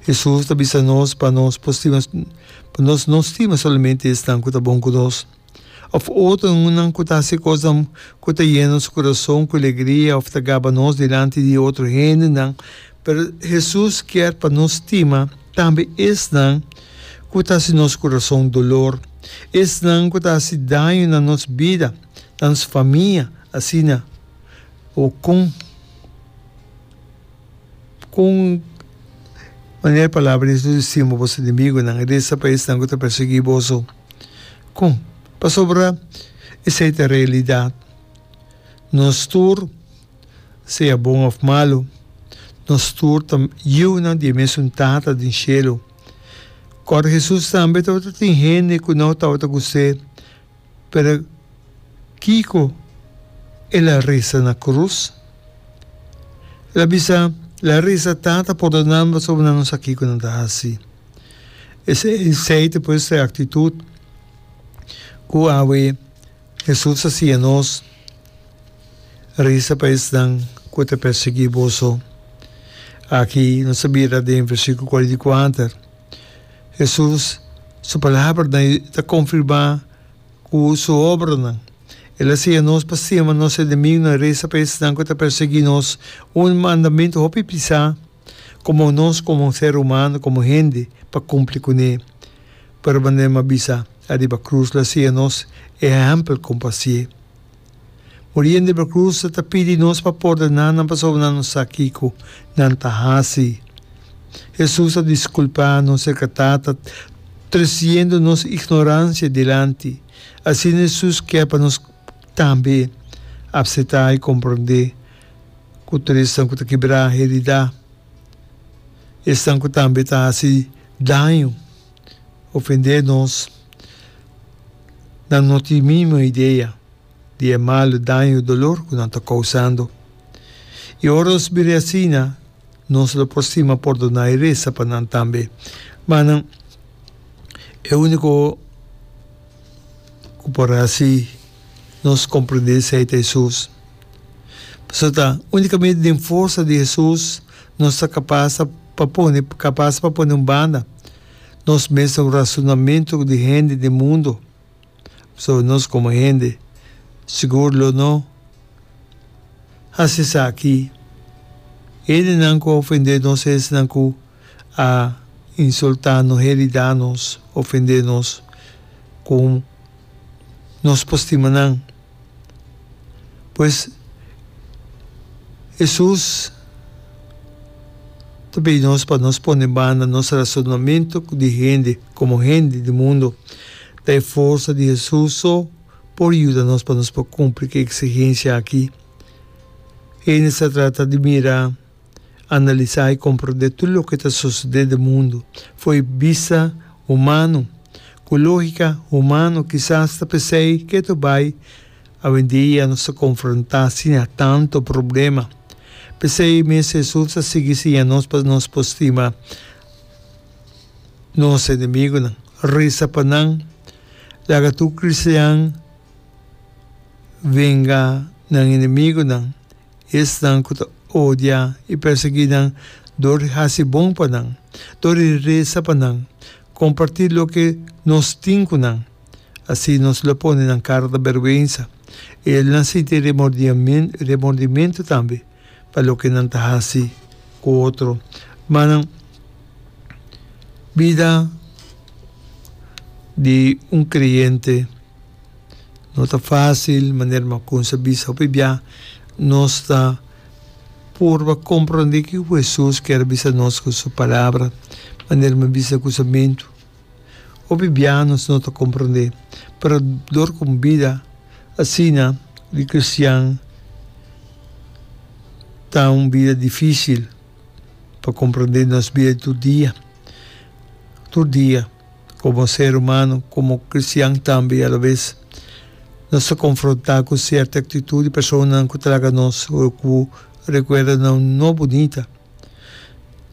Hesus ta bisa nos pa nos por stima, pa nos no stima solamente esnan ku ta bon ku nos, òf otronan ku ta hasi kosnan ku ta yena nos kurason ku legria òf ta gaba nos dilanti di otro hendenan, pero Hesus kier pa nos stima tambe esnan ku ta hasi nos kurason dolor, esnan ku ta hasi daño na nos bida, na nos famia, asina. Ho kon? Ku un manera di palabra Dios lo disi bo, Boso enemigonan e resa pa esnan ku ta persiguí boso. Kon? Pasobra esei ta realidat. Nos tur, sea bon òf malu, nos tur ta yunan di e mesun Tata den shelu. Kòrda Hesus tambe tabata tin hende ku no tabata ku se. Pero kiko el a resa na krus? El a bisa, La resa, Tata, porda nan, pasobra nan no sa kiko nan ta hasi. Esei ta pues e aktitut ku awe Hesus ta siña nos, Resa pa esnan ku e ta persiguí boso. Aki nos a bira den versíkulo kuarenta i kuater. Hesus su palabranan i ta konfirmá ku su obranan. El a siña nos pa stima nos enemigunan, resa pa esnan ku ta perseguí nos, un mandamentu hopi pisá komo nos komo un ser humano, komo hende, pa kumpli kuné. Pero manera mi a bisa, ariba krus el a siña nos ehèmpel kompasié. Oriente Brocruce ta pidi nos pa pordoná nan pasobra nan no sa kiko nan ta hasi. Hesus a diskulpá nos serka Tata tresiendo nos ignoransia dilanti. Asina Hesus kier pa nos tambe apsetá i komprondé ku tur esnan ku ta kibrá heridá, esnan ku tambe ta hasi daño, ofendé nos, nan no tin mínimo idea di e malu daño i dolor ku nan ta kousando. I ora nos bira e asina, nos lo por stima pordoná i resa pa nan tambe. Manan, e úniko ku por hasi nos komprendé esei ta Hesus. Pasobra ta únikamente den forsa di Hesus Nos ta kapas pa pone kapas pa pone un banda nos mes na un rasunamentu di hende den mundu. Pasobra nos komo hende sigur lo no hasi esaki. Hendenan ku a ofendé nos es esnan ku a insultá nos, heridá nos, ofendé nos ku nos por stima nan. Pues, Hesus ta pidi nos pa nos pone banda nos rasonamentu di hende, komo hende di mundu. Ta e forsa di Hesus so por yuda nos pa nos por kumpli ku e eksigensia akí. Hende's ta trata di mira. Analisá i komprondé tur loke ta sosodé den mundu fo'i bista humano. Ku lógika humano kisas ta p'esei ke ta bai awendia nos ta konfrontá siña tantu problema. P'esei mes Hesus a sigui siña nos pa nos por stima nos enemigunan, resa pa nan, laga tur kristian venga nan enemigunan Esnan ku ta odia i pèrsiguí nan dor di hasi bon pa nan, dor di resa pa nan, kompartí loke nos tin ku nan. Así nos lo pone nan kara ta bèrwensa. Elnan sinti remordimentu tambe pa loke nan ta hasi ku otro. Ma nan bida di un kreyente. No ta fásil, manera Macunza a bisa hopi bia, nos ta purba komprondé kiko ku Hesus kier a bisa nos ku su palabra, manera mi a bisa na kusamentu. Hopi bia nos no ta komprondé, pero dor ku un bida asina di kristian ta un bida difísil pa komprondé nos bida di tur dia, tur dia. Komo ser humano, komo kristian tambe i alabes, nos ta konfrontá ku sierto aktitut di personanan ku traga nos o ku rekuerda nan no bunita.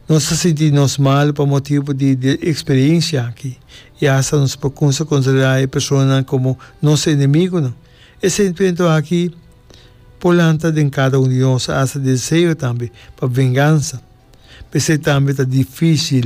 Nos ta sinti nos mal pa motibu di e eksperensia aki i asta nos por kumsa konsiderá e personanan komo nos enemigunan. E sentimentu aki por lanta den kada un di nos asta deseo tambe pa vengansa. P'esei tambe ta difísil